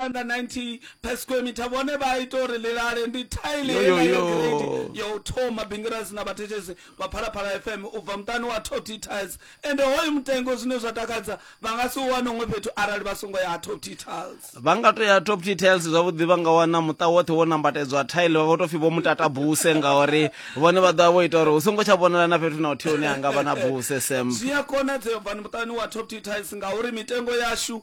90 per square meter vhone vha ita uri ḽilale ndi tile yenayo ya u thoma bingirasi na vhathetshelesi vha phalaphala fm u bva muṱani wa top t tiles ende hoyu mutengo zwine zwa takadza vha nga si u wane huṅwe fhethu arali vha songo ya ha top t tiles vha nga to ya top t tiles zwavhuḓi vha nga wana muṱa woṱhe wo nambatedzwa tile vha to pfi vho mutata buse ngauri vhone vha ḓovha vho ita uri hu songo tsha vhonala na fhethu na uthihi hune ha nga vha na buse sem zwi a konadzea bvani muṱani wa top t tiles ngauri mitengo yashu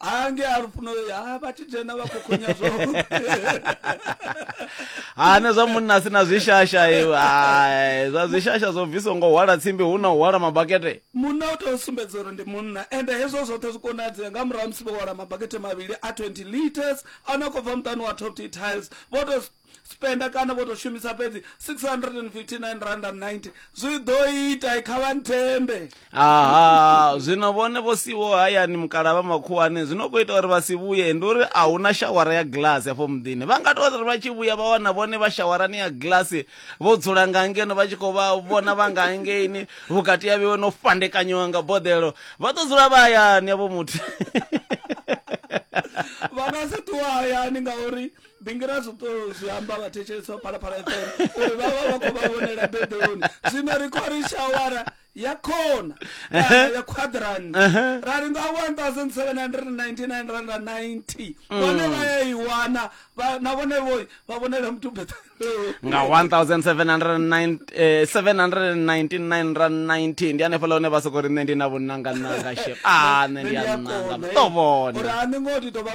hange ari pfuno ha vha tshi dzhena vha khou khonya zwoṱhe hane zwa munna a si na zwishasha iwe hai zwa zwishasha zwo bviswa ngo hwala tsimbi hu na u hwala mabakete munna u tea u sumbedza uri ndi munna ende hezwo zwoṱhe zwi konadzea nga murahu ha musi vho hwala mabakete mavhili a 20 liters a no khou bva muṱani wa top t tiles vho to spender kana vho tou shumisa fhedzi 659 zwi ḓo ita kha vha nthembe aha zwino vhone vho siwo hayani mukala vha makhuwani zwino khou ita uri vha si vhuye ndi uri a hu na shawara ya glass hafho muḓini vha nga tou ri vha tshi vhuya vha wana vhone vha shawarani ya glass vho dzula nga ngeno vha tshi khou vha vhona vha nga ngeini vhukati ya vhewe no fandekanyiwa nga boḓelo vha ḓo dzula vha hayani yavho muthu vha nga si ṱuwa hayani ngauri ndi ngira zwo to zwi amba vhathetshelesi vha phalaphala fm uri vha vha vha khou vha vhonela beḓeloni zwino ri khou ri shawara ya khona kana ya quadran ra ri nga 1799 rand na 90 vhone vha ya i wana vha- na vhone vho vha vhonela muthu beḓeloni nga 1799 ra 19 ndi hanefhaḽa hune vha soko ri nṋe ndi na vhunangananga shep a nṋe ndi a nanga ḓo vhona uri a ni ngo ti to vha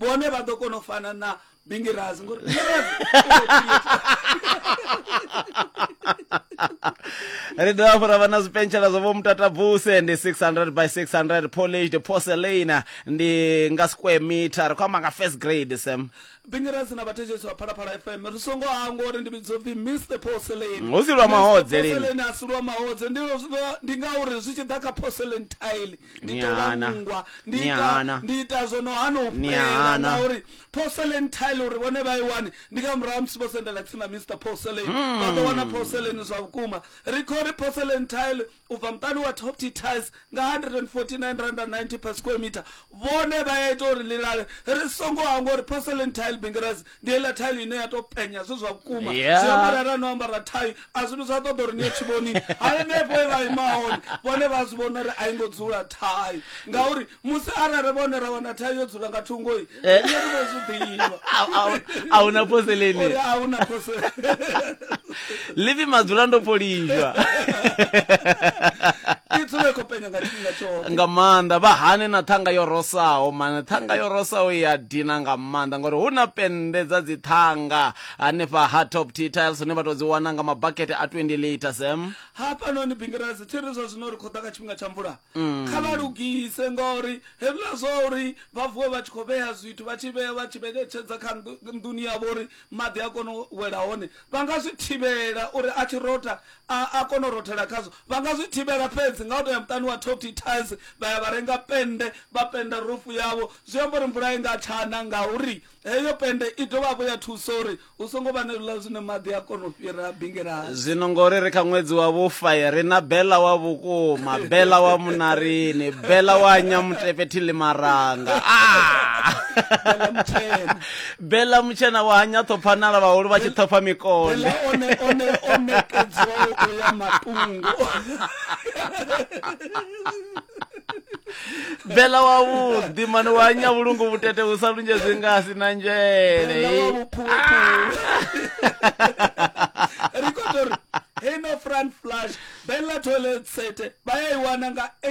vhone vha ḓo kona u fana na bingirazi ngori ri dovha fhura vha na zwipentshela zwa vho mutatabuse ndi 600 by 600 polished porcelain ndi nga square meter ri khou amba nga first grade sam bingirazi na vhathetshelesi vha phalaphala fm ri songo hangwa uri ndi vhidzo pfi mr porcelain Hu si lwa mahodze lini. Porcelain a si lwa mahodze ndi ndi ngauri zwi tshi ḓa kha porcelain tile ndi Ni ṱola hana. nngwa ndi Ni ita hana. ndi ita zwo no hana u Ni fhela hana. ngauri porcelain tile uri vhone vha i wani ndi nga murahu ha musi vho sendela tsini na mr porcelain Hmm. vha ḓo wana porcelain zwa vhukuma ri khou ri porcelain tile u bva muṱani wa top t tiles nga 149 rand and 90 per square meter vhone vha ya ita uri ḽilale ri songo hangwa uri porcelain tile bingirasi ndi heiḽa thailo ine ya to penya zwi zwa vhukuma Yeah. zwi amba arali no ambara thai a zwi zwa ṱoḓa uri ni ye tshivhoni hanefho e vha ima hone vhone vha zwi vhona uri a i ngo dzula thai ngauri musi arali vhone ra wana thai yo dzula nga thungoi Eh. ri vho zwi ḓivha A- a- a huna phoseleni. uri a huna phosele livi madzula ndo polizhwa i dzule khou penya nga tshifhinga tshoṱhe nga maanḓa vha hane na ṱhanga yo rosaho mane ṱhanga yo rosaho i a dina nga maanḓa ngori hu na pennde dza dziṱhanga hanefha ha top t tiles hune vha tou dzi wana nga mabakete a 20 lita sem hafhanoni bingirasi thi ri zwa zwino ri khou ḓa kha tshifhinga tsha mvula kha vha lugise ngauri hezwiḽa zwa uri vha vuwe vha tshi khou vhea zwithu vha tshi vhea vha tshi vhetshedza kha nnḓu- nḓuni yavho uri maḓi a kone u wela hone, vha nga zwi thivhela uri a tshi rotha a, a kone u rothela khazwo. Vha nga zwi thivhela fhedzi nga u tou ya muṱani wa Tofty Tiles vha ya vha renga pennde vha pennda rufu yavho. Zwi amba uri mvula i nga tsha na ngauri heyo pennde i dovha hafhu ya thusa uri hu songo vha na hezwiḽa zwine maḓi a kona u fhira bingelani. Zwino ngori ri kha ṅwedzi wa vhufa, ri na Bella wa vhukuma, Bella wa Munarini, Bella wa Nyamutepe Thilimaranga. Ah! Bella mutshena. bela mutshena wa hanya ṱhophanala vhahulu vha tshi ṱhopha mikole o nekedzwaho u ya matungo bela wa vhuḓi mani wa hanya vhulungu vhutete hu sa lunzhe zwi nga si na nzhele ri khou tou ri heino front flash bela toilet sete vha ya i wana nga